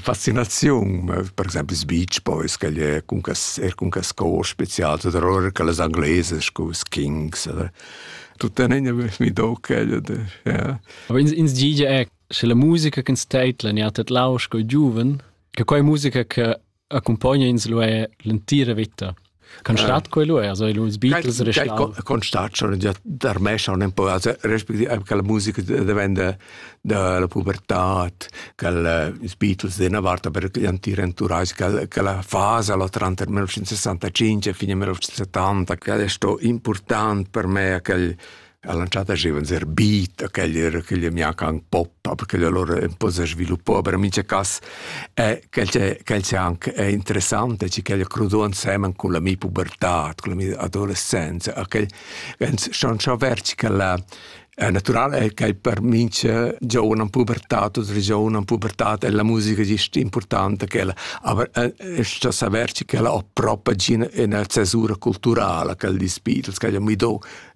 fascinaziun per exempel ils beach boys che è cun cas er cun cas cor spezial oder oder che les angleses cu kings oder tuttenina mi do quel ja aber ins ins gige è sche la musica che ins teitla ni hat et lausch co giuven che quei musica che accumpogna ins lu er l'entira veta. Con stat quei lu? Also lu ils Beatles reschlau. Con stat schon già tarmescha un po', also respektive che la musica diventa dalla pubertà, che ils Beatles di una volta per gli antichi entourage, che, che la fase la tranter 1965 e fine 1970, che è stato importante per me, che ha lancià da giovens er beat a quel era che gli mia can poppa perché loro un po' si sviluppò però in mince cas è che quel c'è anche è interessante ci che crudò insieme con la mia pubertà con la mia adolescenza a quel schon schon verci che la è naturale che per mince giovane in pubertà, tutti i giovani in pubertà e la musica è importante che la aber sta saperci che la ho proprio in una cesura culturale che di Beatles che mi do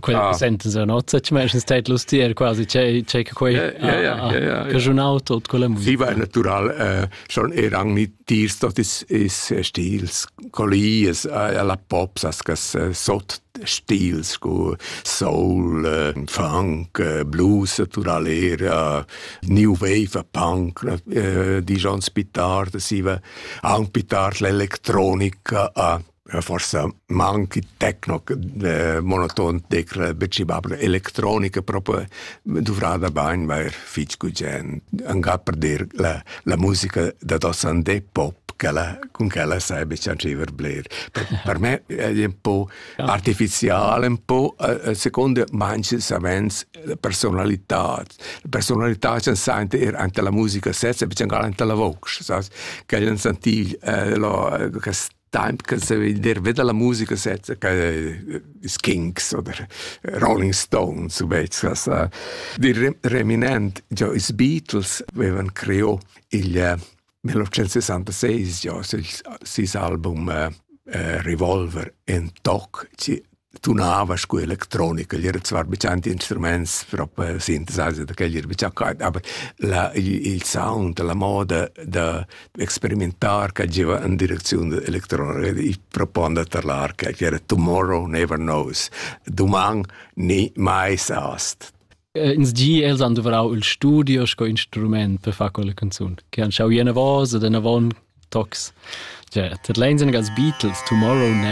Quella ah. senten se nozza, ci meis stat lustier quasi che che quei caschunau tot quella musica. Sie war natural äh, schon er an mit tirs tot is is stils collies alla pop sas sot stils cu soul, äh, funk, äh, blues naturalera, new wave punk, äh, di John Spitard, si va anche Spitard l'elettronica a forsa manchi techno monoton tecla becibabla electronica proprio duvrada bain vair fitg gugent angà per dir la, la musica da dossandé pop quella, con quella sai beccianciver bler. Per, per me è un po' artificiale, un po' eh, eh, secondo manche savens la personalità. La personalità c'è sente er anche la musica stessa, becciangal anche la voce, sas? Che jan sentiv eh, lo, eh, Time che se il derve della musica sezza che i Skinks oder Rolling Stones u vezzas di reminent già i Beatles avevan creò il 1966 già sis album uh, Revolver en toc ci tunava scu electronica, glieud var be tschanti instruments propo sintesasa da quel ir be tschaccait, aber la, il sound, la moda da experimentar che giva in direcziun electronica, i proponda tar l'arca, che era tomorrow never knows, doman ni mai sast. Ins gi els han dovrau il studio sco instrument per far quella canzun, che han schau ena vosa, den avon tocs. Cioè, tat leins als Beatles, Tomorrow Never